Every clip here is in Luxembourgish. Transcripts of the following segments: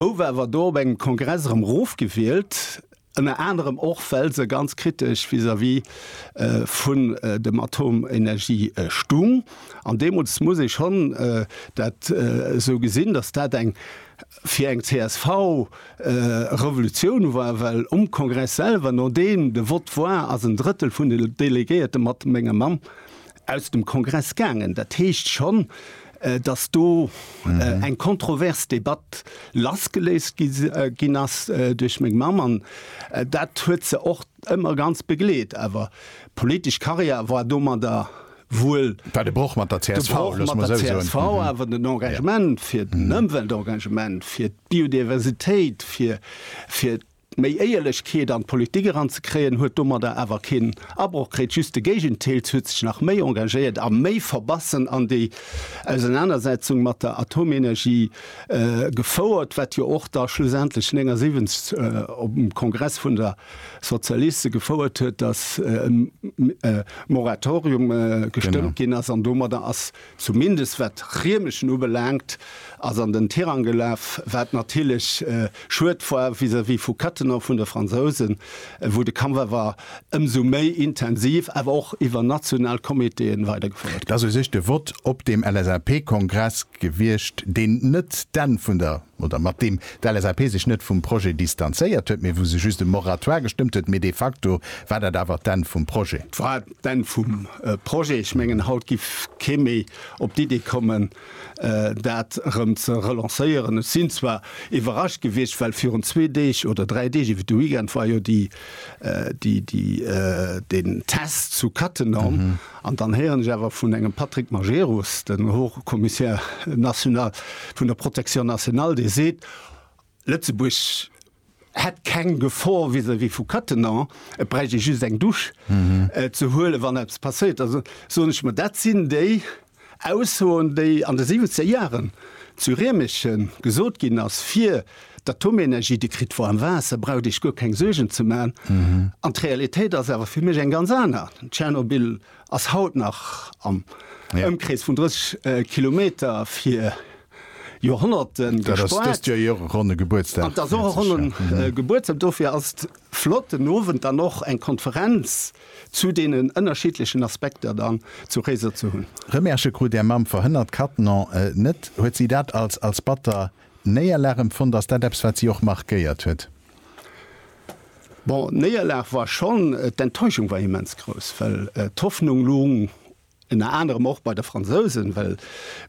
Houwe awer do op engem Kongress erëm rofgewielt, ënner anerem och well se ganz kritesch vis-à-vis vun dem Atomenergie stung. An deemools muss ee schonn dat esou gesinn, datt dat eng fir eng csv Revolutioun war, well um Kongress selwer, nodeem de Vott war, ass en Drëttel vun de Delegéierte mat mengem Mann aus dem Kongress gaangen. Dat heescht schonn, datt do eng kontrovers Debatt lassgeléist ginn ass duerch meng Mamm an dat huet se och ëmmer ganz begleet. Awer politesch Karriär war domadder wuel. War de Broch mat der csv, loosse mer esou soen. Broch mat der csv, awer den Engagement fir den Ëmweltengagement, fir d'Biodiversitéit, fir, Méi Éierlechkeet an d'Politik eranzekréien huet domadder awer keen Abroch kritt, just de Géigenteil, se huet sech nach méi engagéiert a méi verbassen an déi Ausenanersetzung mat der Atomenergie gefouert, wat jo och da schlussendlech 79 op dem Kongress vun der Sozialiste gefouert huet, datt e Moratorium gestëmmt ginn ass an domadder ass zumindest wat Riemerschen ubelaangt, ass an den Tirang gelaf, wat natierlech schued war vis-à-vis vu Cattenom, vun de Fransousen, wou de Kampf awer ëmsou méi intensiv, awer och iwwer national Comitéen weidergefouert gëtt. Dat ass u sech de Vott op deem LSAP-Kongress gewiescht, deen net d'Enn vun der. oder mat deem d'LSAP sech net vum Projet distanzéiert huet, mee wou se just e Moratoire gestëmmt huet, mee de facto war dat awer d'Enn vum Projet. War d'Enn vum Projet. Ech mengen, haut giff kee méi op d'Idee kommen, dat erëm ze relancéieren. Ech sinn zwar iwwerrascht gewiescht, well virun zwee Deeg oder dräi Deeg, iwwer de Weekend, war jo déi, déi, den Test zu Cattenom. An dann héieren ech awer vun engem Patrick Majerus, den Haut-Commissaire national vun der Protection nationale, dee seet, Lëtzebuerg hätt keng Gefor vis-à-vis vu Cattenom, et bräicht ee just eng Douche ze huelen, wann eppes passéiert. Da soen ech mer, dat sinn déi Aussoen, déi an de siwwenzeg Jaren zu Riemerschen gesot ginn ass, fir D'Atomenergie, déi kritt woarm Waasser, braucht Iech guer keng Suergen ze man. An d'Realitéit ass awer fir mech eng ganz aner. Tschernobyl ass haut nach am Ëmkrees vun 30 Kilometer fir Joerhonnerte gespaart. An et ass och e ronne Gebuertsdag. Dofir ass et flott, den Owend dann och eng Konferenz zu deenen ënnerschiddlechen Aspekter dann zu Réiser ze hunn. Remerque krut Är Mamm verhënnert Cattenom net. Huet si dat als batter Néierlag empfonnt? Ass dat eppes, wat si och markéiert huet? Bon, d'Néierlag war schonn, d'Enttäuschung war immens grouss, well d'Hoffnung loung ënner anerem och bei de Fransousen, well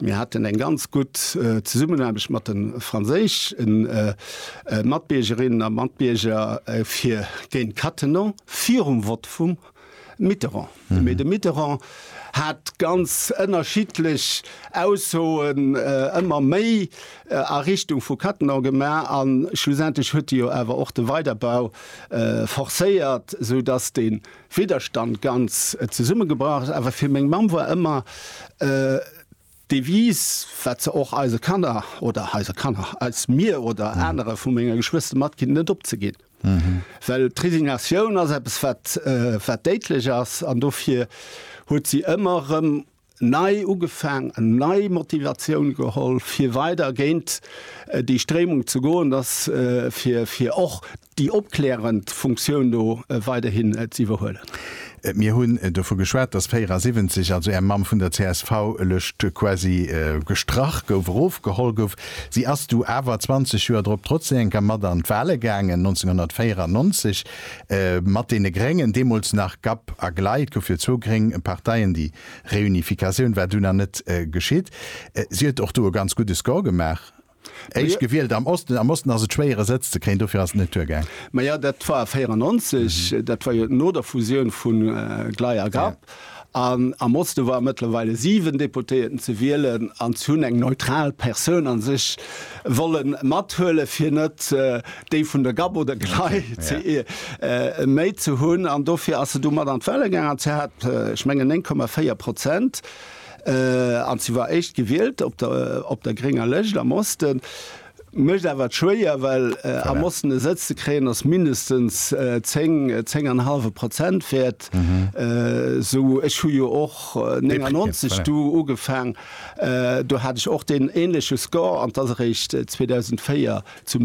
mir haten eng ganz gutt Zesummenaarbecht mat de franséische Matbiergerinnen a Matbierger fir géint Cattenom virum Vott vum Mitterrand. Mee de Mitterrand hat ganz ënnerschiddlech Aussoen ëmmer méi a Richtung vu Cattenom gemaach a schlussendlech huet e jo awer och de Weiderbau forcéiert, sou datt de Widderstand ganz zesummegebrach ass. Awer fir meng Mamm war ëmmer D'Devise, wat se och eise Kanner oder eise Kanner als mir oder anere vu menge Geschwëster matginn, net opzeginn. Well d'Resignatioun ass eppes, wat, wat déidlech ass. An dofir huet si ëmmer erëm nei ugefaang an nei Motivatioun geholl, fir weider géint déi Stréimung ze goen, dass fir, fir och déi opklärend Funktioun do weiderhin ze iwwerhuelen. Mir hunn dovu geschwat, dass 74, also Är Mamm, vun der CSV-Lëscht quasi gestrach gouf, erofgeholl gouf. Si ass du awer 20 Joer drop trotzdem enker mat an d'Wale gaangen, 1994 mat deene Gréngen, deemools nach GAP a glei, et gouff jo zwou gréng Parteien, déi Reunificatioun war dunn nach net geschitt. Si huet och do e ganz gudde Score gemaach. Éischt gewielt am Osten. Am Osten ass et schwéier e Sëtz ze kréien, dofir ass et net duergaang. Maja, dat war 94, dat war jo no der Fusioun vu Glei a Grapp. An am Oste waren mëttlerweile 7 Deputéierten ze wielen an se hunn eng neutral Persoun a sech wolle mathuelen, fir net déi vun der Gap oder Glei méi ze hunn. An dofir ass se du mat an d'Wahle gaangen an se hat, ech mengen, 9,4 Prozent. An si war éischt gewielt op der grénger Lëscht am Osten. Mécht awer schwéier, well am Osten e Sëtz ze kréien ass mindestens 10, 10 an e hallwe Prozent wäert. Sou, ech hu jo och 99 do ugefaang, do hat ech och deen änleche Score an 't ass eréischt 2004 zum.